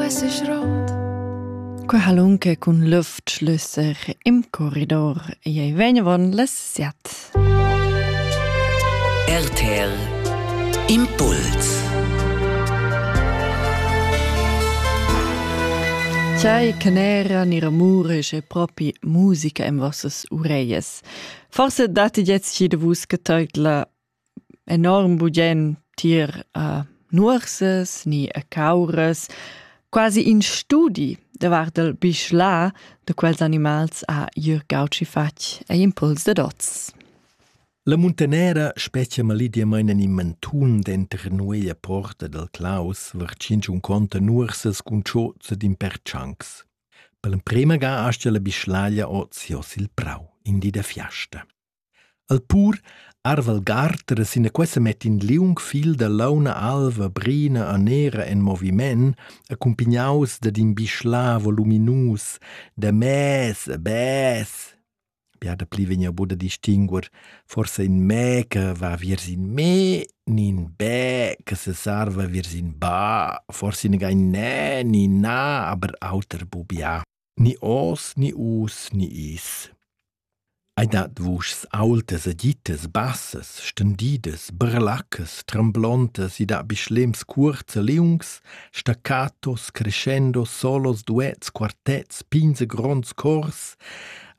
esser rot. Qualunque cun lüftschlüsser im corridor ei vegnevon les siat. RTL Impuls Chai che n'era ni ramure che propi musica in vossas ureies. Forse date jetzt jede vus geteutla enorm bugen tier a nuorsas ni a cauras, quasi in studi davart il bischla da quels animals ha Jürg Gautschi fatg ei impuls dad oz. La muntanera spetga malidiamain in mantun denter nueglia porta dal Claus vartschinch un conta nuorsas cun chozza d'impertschancs. Per l'emprema ga astia la bischlaglia oz jos il prau, in di da fiasta. El pur arva il garter e sinaquei semetti in liung fil da launa alva, brina e nera en moviment, accumpignaus dad in bischla voluminus da mez a bess. Bia dapli vegn buca da distinguer, forsa in mè che va viers in mè ni in bè che sesarva viers in ba, forsi negai nè ni na, aber auter bu bia. ni ors ni us ni is. Ei dat vuschs aultas e dittas bassas, stendidas, brelaccas, tremblontas e da bischlems cuorts e liungs, staccatos, crescendo, solos, duets, quartets, pigns e gronds cors,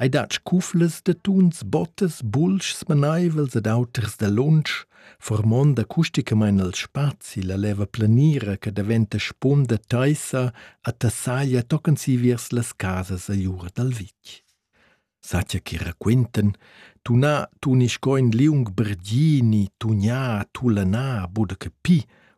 ei dat scuflas de tuns, bottas, bulschs meneivels ed auters da lunsch, formond acusticamain el spazi la leva planira che daventa spunda taissa a tassaglia tochen si viers las casas agliura dal vitg. Satja che raquintan, tunà tuni sco in liung berdini, tugnà, tulanà, buda che pi,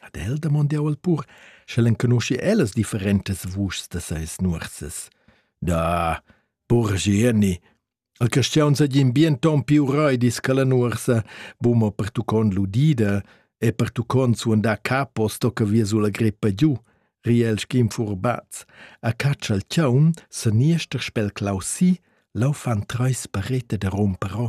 Ad el damond jau al pur, sch'el enconuschi ellas differentas vuschs da seis nuorsas. Da, pur Gieni, el creschiaun seigien bien ton più röidis che la nuorsa, buma pertuccond l'udida e pertuccond suandar capo sto che via sulla greppa giù, riel schim furbaz. A caccia il chaun, se niester spel clausi, lau fan treis parete da romperò.